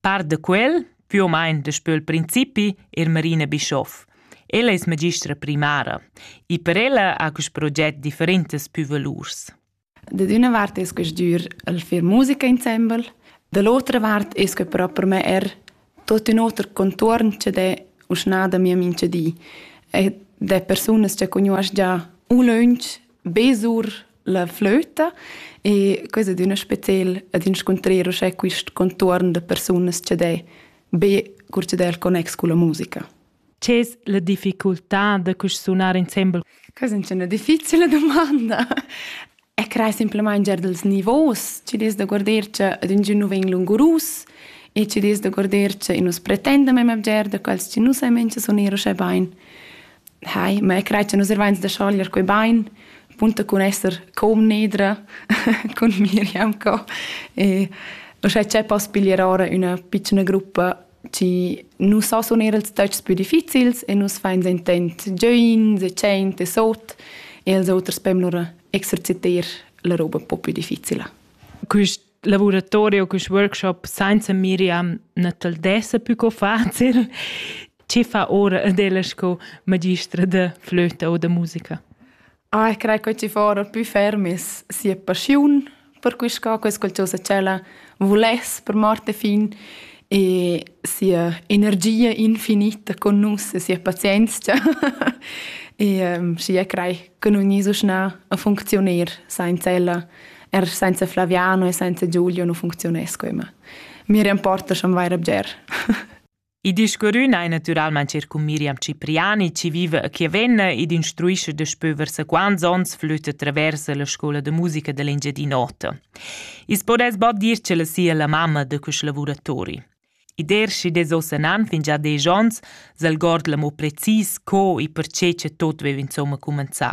Par da quel, più o meno daspö il principi, è Marina Bischoff. Ella es magistra primara e per ella ha quist proget differentas pü valurs. Da d'üna vart es que stür el fer musica insembel, da l'otra vart es que però per me er tot ün oter contuorn che d'è uschna da mia mincha di. E d'è persunas che cugnuosch già ulönch be sur la flöta e quai ad üna spetel ad inscuntrer uschè quist contuorn da persunas cha d'he be cur cha d'he il connex culla musica. C'es la difficultà da cusch sunar insembel? Questa è una difficile domanda. E crei semplamain gier dels nivos, ci des da guarder che ad un nu vegn lungurus e ci des da guarder che nus pretendem em gier da quels ci nus hai menche soner uschè bain. Hai, ma io crei che nus ervains da schoglier quei bain, punta cun esser comnedra cun Miriam co. E uschè c'è poss piglier ora üna pitschna gruppa chi nu so suner ils töchs pü difficils e nus fains intent giöins e tschient e sot e als oters pem lura exerciter la roba un po pü difficila. Quist laboratorio quest workshop senza Miriam non te desse più co facile Ci fa ora adela sco magistra de flöte o de musica? Ah, ich credo che ci fora più fermis sia passione per questa cosa, qualcosa che la volesse per Marte fin e sia energia infinita con nus e sia pazienza e um, sia crei che non so schnell a funzionare senza ella Er senza Flaviano e senza Giulio non funziones quema. Mi remporta schon vaira bger. I discurrün ei naturalmein cer cun Miriam Cipriani, ci vive a Chiavenna ed instruisce daspö versa quants ons flütte traversa la scola de musica dell'Engiadin'Ota. Is podes bod dir ce la sia la mamma de questi lavoratori. I dershi des osanan fin già desch ons, s'algord l'amo precis co e perché ce tot vev insomma cumanzà.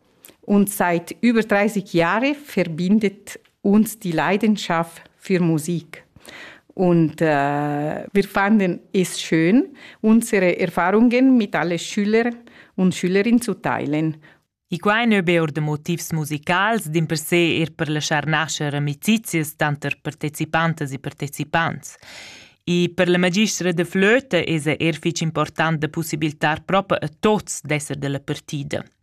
und seit über 30 Jahren verbindet uns die Leidenschaft für Musik. Und äh, wir fanden es schön, unsere Erfahrungen mit allen Schülern und Schülerinnen zu teilen. I quai nu be or da motivs musicals, din per se er per laschar nascher amicizias tanter partecipantas e partecipants. I per la magistra de flöte es er fich important da possibiltar propa a tots d'esser della partida.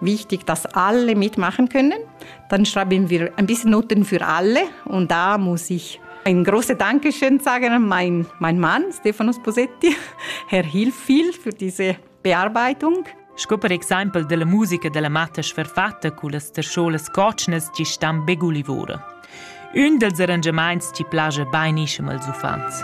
wichtig, dass alle mitmachen können. Dann schreiben wir ein bisschen Noten für alle und da muss ich ein großes Dankeschön sagen an meinen mein Mann, Stefanos Posetti. Er hilft viel für diese Bearbeitung. Sco per exempel della musica della matta sferfatta cu las terscholas cotschnas chi stan begulivora. Ün dels arrangiamaints chi plaja bainischem als uffants.